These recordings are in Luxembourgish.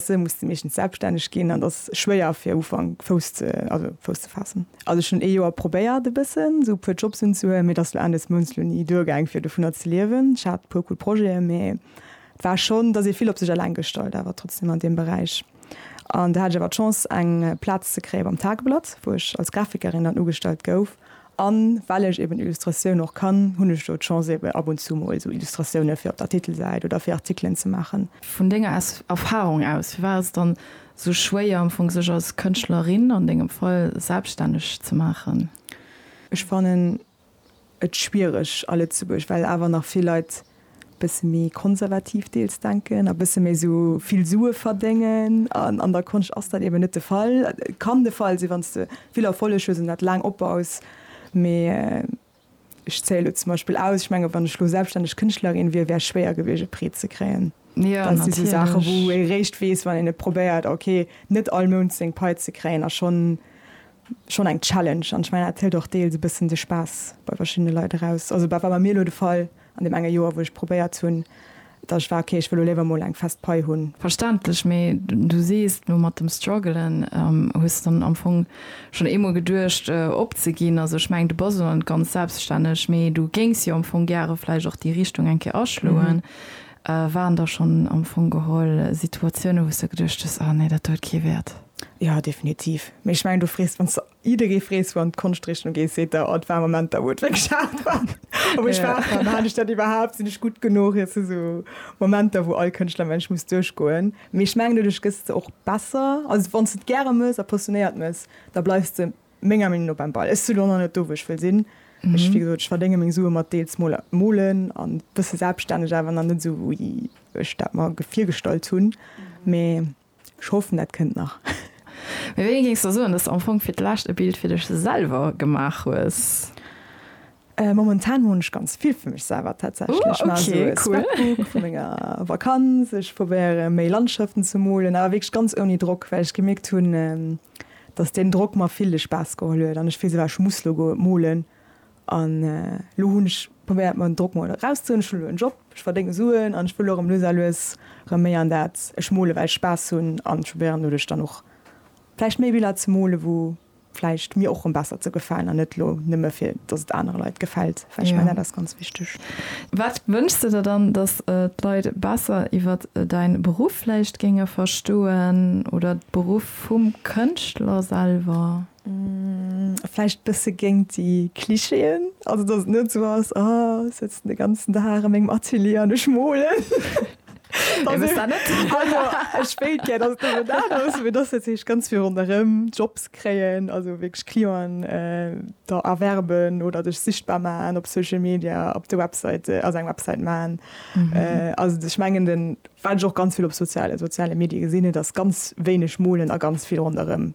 Se musse meeschtens selbststänneg ginn an et ass schwéier fir am Ufank Fouss ze, also Fouss ze faassen. Also ech hunn ee Joer probéiert e bëssen esou e puer Jobs unzehuelen, mee et ass lo Enn des Mounts lo ni duergaang fir dovunner ze liewen. Ech hat e puer cool Projeten, mee et war schonn, et ass ee vill op sech alleng gestallt awer trotzdeem an deem Beräich. An do hat ech awer d'Chance eng Plaz ze kréie beim Tageblatt, wou ech als Grafikerin dann ugestallt gouf A well ech eben Illustratioun och kann, hunn ech do d'Chance eben ab und zu mol esou Illustratioune fir op der Titelsäit oder fir Artikelen ze maachen. Vun denger Erfarung aus, firwat ass et dann esou schwéier am Fong sech als Kënschtlerin, an dengem Fall, selbststänneg ze maachen? Ech fannen et schwiereg a Lëtzebuerg, well awer nach vill Leit bësse méi konservativ deels denken a bësse méi esou vill Sue verdéngen. An an der Konscht ass dat eben net de Fall. Et kann de Fall sinn, wann s de vill Erfolleg hues an dat laang opbaus. Mee ech zéie lo zum Beispill aus, ech menge wann ech lo selbststänneg Kënschtlerin wier, wär schwéier gewiescht e Prêt ze kréien. Dat si sou Saache wou ee réischt weess, wann een et probéiert. Okay, net all Mount seng Pai ze kréien ass schonn schonn eng Challenge. An ech mengen dat hëlt och deels e bëssen de Spaass bei verschiddene Leit eraus. Also dat war bei mir lo de Fall. An deem enge Joer, wou ech probéiert hunn, datt ech war, ok, ech wëll elo léiwer mol eng fest Pai hunn. Verständlech, mee du sees elo mat dem Struggelen, hues dann am Fong schonn eemol geduecht opzeginn. Also ech mengen, du bass elo net ganz selbststänneg, mee du géings jo am Fong gäre vläicht och déi Richtung eng Kéier aschloen. Waren da schonn am Fong geholl Situatiounen, wou s de geduecht hues, ah nee, dat huet kee Wäert? Jo, definitiv. Mee ech mengen, du frees, wann s de Jidderee frees wann d'Konschtrichtung gees seet der oh et war e Moment da wou et wierklech haart war a wou ech war ja maan ech dat iwwerhaapt, sinn ech gutt genuch, et si esou Momenter wou all Kënschtler mengen ech muss duerchgoen. Mee ech mengen doduerch gëss de och besser, also wann s de et gäre mëss a passionéiert mëss da bleifs de menger Meenung no beim Ball. Ech si lo nach net do wou ech wëll sinn, ech wéi gesot ech verdénge meng Sue mat deels moler molen a bësse selbststänneg awer nach net esou wéi ech dat mer virgestallt hunn mee. Ech hoffen dat kënnt nach. Mee wéini géings de soen, dass de am Fong fir d'lescht e Bild fir dech selwer gemaach hues? Momentan moen ech ganz vill fir mech selwer tatsächlech. Maache sou e Scrapbook vu menger Vakanz. Ech probéiere méi Landschaften ze molen, awer wierklech ganz ouni Drock, well ech gemierkt hunn, dass deen Drock mer vill de Spaass geholl huet an ech d'Gefill si war, ech muss lo goe molen, An elo hunn ech probéiert mer den Drock mol eraus ze huelen. Ech hunn elo en Job, ech verdénge Suen an ech wëll elo erëm lues a lues erëm méi an dat. Ech mole well ech Spaass hunn an ech probéieren doduerch dann och vläicht méi Biller ze mole wou vläicht mir och erëm besser ze gefalen an net elo nëmme fir datt et anere Leit gefält, well ech mengen dat ass ganz wichteg. Wat wënschs de der dann, datt d'Leit besser iwwer däin Beruff vläicht géinge verstoen oder de Beruff vum Kënschtler selwer? Vläicht bësse géingt déi Clichéen, also datt et net esou ass, ah ech sëtzen de ganzen Dag a mengem Atelier an ech molen. Ech wëss dat net. Also ech wéilt gär, datt et nëmme dat ass, mee datt dat heescht ganz vill ronderëm, Jobs kréien, also wierklech Clienten der erwerben oder dech sichtbar maachen op Social Media, op de Websäite, also eng Websäit maachen. Also ech mengen den, wat ech och ganz vill op soziale, soziale Medie gesinn, et ass ganz wéineg molen a ganz vill ronderëm.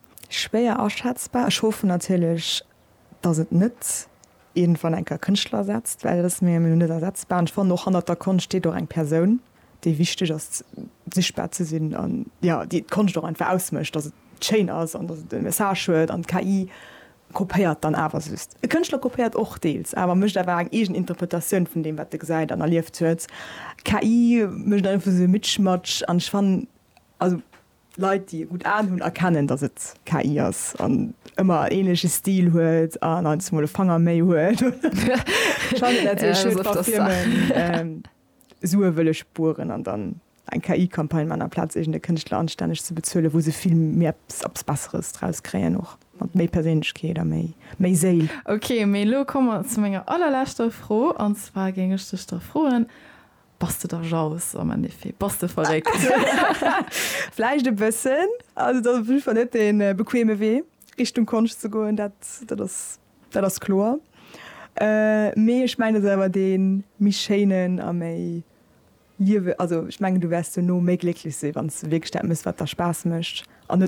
Schwéier aschätzbar. Ech hoffen natierlech, datt et net iergendwann eng Kéier Kënschtler ersetzt, well dat ass mir elo net ersetzbar. An ech fannen och, hannert der Konscht steet och eng Persoun, déi wichteg ass, sichtbar ze sinn an, jo, déi d'Konscht och einfach ausmécht, datt et schéin ass an datt et e Message huet. An d'KI kopéiert dann awer just. E Kënschtler kopéiert och deels, awer mécht awer eng eegen Interpretatioun vun deem, wat e gesäit an erlieft huet. D'KI mécht einfach esou e Mitschmatsch an ech fannen, also. Leit, déi e gutt Aen hunn, erkennen, datt et KI ass an ëmmer en ähnleche Stil huet an eins mol e Fanger méi huet. Sue wëll ech spueren an dann eng KI-Campagne man, amplaz iergend e Kënschtler anstänneg ze bezuelen, wou se vill méi eppes Besseres draus kréien, och mat méi Perséinlechkeet a méi Séil. Ok, mee elo komme mer zu menger allerleschter Fro. An zwar géing ech dech da froen, Bass de da jaloux am Endeffet? Bass de verréckt? Vläicht e bëssen. Also et ass op jidde Fall net dee bequeme Wee, Richtung Konscht ze goen, dat, dat ass, dat ass kloer. Mee ech mengen, et ass awer dee méi schéinen a méi liewe-, also ech mengen, du wäerts duerno méi glécklech sinn, wann s de wierklech dat méchs, wat der Spaass mécht an net.